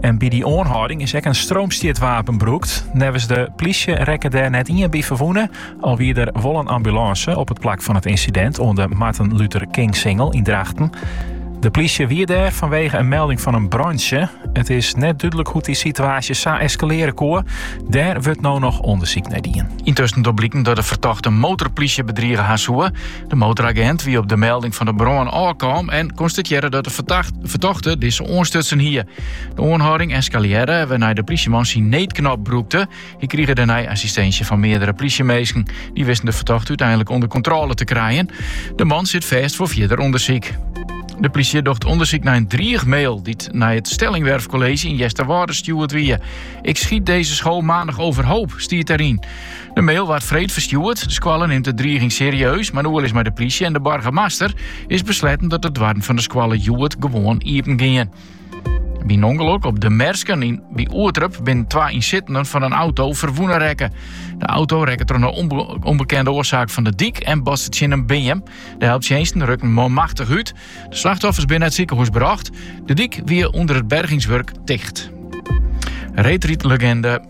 En by die oanhâlding is ek in stroomstjitwapen brûkt. Neffens de plysje rekke dêr net ien by ferwûne, al wie der wol in ambulânse op it plak fan it ynsidint oan de Martin Luther King Singel yn Drachten. De plysje wie dêr fanwegen in melding fan in brântsje. It is net dúdlik hoe't dy situaasje sa eskalearje koe. Dêr wurdt no noch ûndersyk nei dien. Yntusken docht bliken dat de fertochte de motorplysje bedrige ha soe. De motoragent wie op de melding fan de brân ôfkaam en konstatearre dat de fertochte dizze oanstutsen hie. De oanhâlding eskalearre, wêrnei de plysjeman syn needknop brûkte. Hy krige dêrnei assistinsje fan meardere plysjeminsken. Die wisten de fertochte úteinlik ûnder kontrôle te krijen. De man sit fêst foar fierder ûndersyk. De plysje docht ûndersyk nei in driichmail dy't nei it Stellingwerf College yn Easterwâlde stjoerd wie. Ik schiet deze school maandag overhoop, stiet deryn. De mail waard freed ferstjoerd. De skoalle nimt de driiging serieus, mar nei oerlis mei de plysje en de boargemaster is besletten dat de doarren fan de skoalle hjoed gewoan iepen gean. By in ûngelok op de Mersken by Oerterp binnen twa ynsittenden fan in auto ferwûne rekke. De auto rekke troch in onbe- onbekende oarsaak fan de dyk en botste tsjin in beam. De helptsjinsten rukken manmachtich út. De slachtoffers binne nei it sikehûs brocht. De dyk wie ûnder it bergingswurk ticht. Retreat-legende.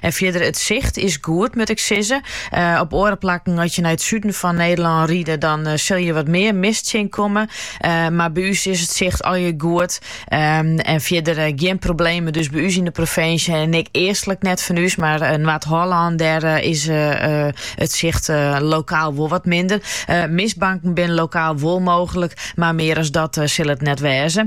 En fierder, it sicht is goed, moat ik sizze. Op oare plakken, at je nei it suden fan Nederlân ride, dan sil je wat mear mist tsjinkomme. Mar by ús is it sicht allegear goed. En fierder gjin problemen dus by ús yn de provinsje en ek eastlik net fan ús. Mar Noard-Hollân, dêr is it sicht lokaal wol wat minder. Mistbanken binne lokaal wol mooglik, mar mear as dat sil it net wêze.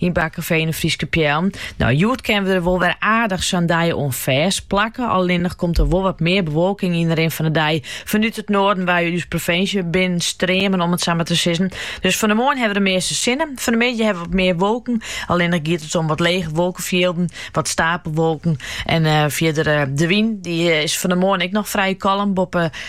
Yn Bakkefean de Fryske Pyl. No, hjoed kinne we der wol wer aardich sa'n dei oan fêstplakke. Allinnich komt der wol wat mear bewolking yn de rin fan de dei. Fanút it noarden wei ús provinsje binnenstreamen, om it sa mar te sizzen. Dus fan de moarn hawwe we de measte sinne. Fan de middei hawwe we wat mear wolken. Allinnich giet it om wat lege wolkefjilden, wat steapelwolken. En fierder de wyn, dy is fan de moarn ek noch frij kalm. Boppe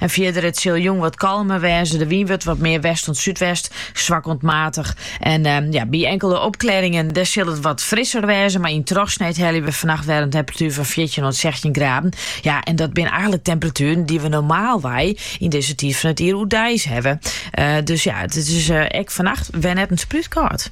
En fierder, it sil jûn wat kalmer wêze. De wyn wurdt wat mear west oant súdwest, swak oant maatich. En ja, by inkelde opklêringen dêr sil it wat frisser wêze, mar yn trochsneed helje we fannacht wer in temperatuer fan fjirtjin oant sechstjin graden. Ja, en dat binne eigentlik temperatueren dy't we normaalwei yn dizze tiid fan it jier oerdeis hawwe. Dus ja, it is ek fannacht wer net in sprút kâld.